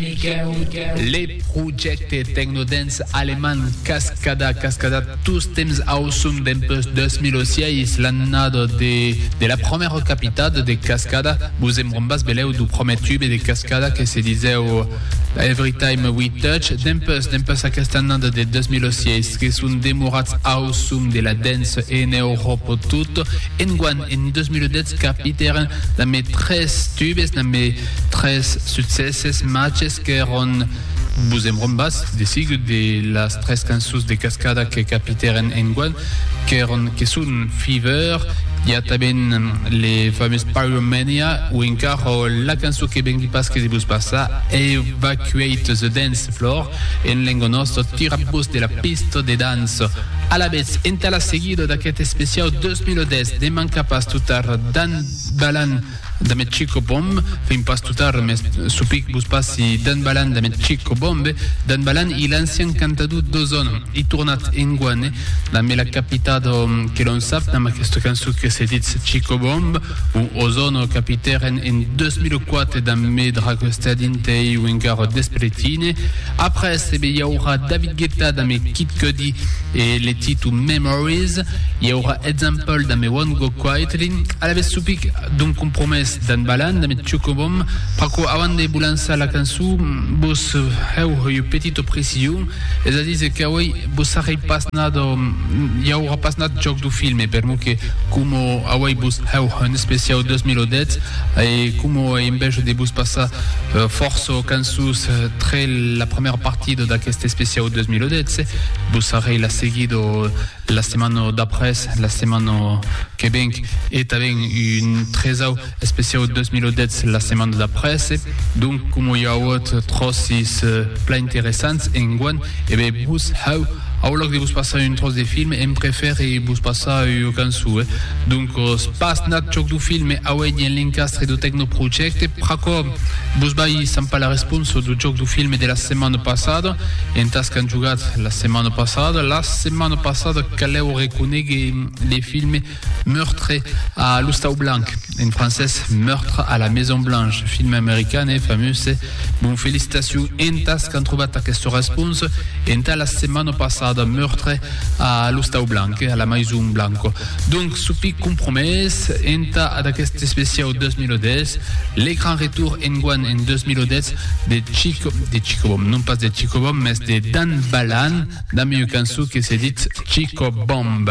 Le projècte tecnodance alemand Cascada, Cascada tostemps auçon dempuèi 2006, l'annada de la prumèra capitada de Cascada, vos en brombas belèu du prumèr tube de Cascada que se disèu Everytime We Touch. Dempuèi, dempuèi aquesta annada de 2006, que son demorats auçon de la dance en Euròpa tot. Enguan, en 2010, capitèren damb 3 tubes, damb Tres succèsses machs qu'èron Vos embrombatz de sigut de las tres cançons de Cascada que capitèren enguan, qu'èron, que son Fever, i a tanben le famós Pyromania o encara la cançon que vengui pas que de vos passar, Evacuate the Dance Floor, en lenga nòsta, Tiratz-vos de la pista de dança! Alavetz, entà la seguida d'aquest especiau 2010 ne manca pas tota ara d'an balhan! Da me chico bom, fin pas tot ar mes supic vos passi Dan Balan da me chico bom be Dan Balan i l'ancian cantador d'Ozon i tornat enguane da me la capita do que l'on sap dam aquesta cançó que se ditz chico bom o Ozono capitèren en 2004 da me dragostar dintei un garo d'espeletine après be i aurà David Guetta da me Kid Cudi E le titun Memories, i aurà example damb I Won't Go Quietly, alavetz supic d'un compromès d'en Balan damb eth Chocobom, pr'aquò avant de vos lançar la cançó vos hèu ua petita precision, es a díser qu'auei vos sarrei pas nat o i aurà pas nat jòc du filme, permor que coma auei vos hèu un especiau 2010 e coma ei enveja de vos passar fòrça cançons, Sus tre la premèra partida d'aqueste especiau 2012, vos arrei la seguida la setmana d'après, la setmana que venc, e tanben un tresau especiau 2012 la setmana d'après. Donc, coma i auot tròcis plan interessants enguan, E ben vos, hau, au lòc de vos passar un tròç de film, èm prefère vos passar ua cançon, eh? Doncos, pas nat chòc dau film, me auei dins l'encastre dau Tecnoprojecte, pr'aquò vos vai sampar la responsa dau jòc dau film de la setmana passada, entàs qu'an jogat la setmana passada, la setmana passada, calèu reconéguer le film, Meurtre a l'Ostau Blanc, en francés Meurtre à la Maison Blanche, film american e famuse. Mon felicitacion entas qu'an trobat aquesta responsa entà la setmana passada, Meurtre a l'Ostau Blanc, a la Maison Blanco. Donc, sopi compromés entà d'aquest especiau 2010, le grand retour enguan en 2010 de Chico, de Chico Bom, non pas de Chico Bom, mes de Dan Balan, damb ua cançon que se ditz Chico Bomb.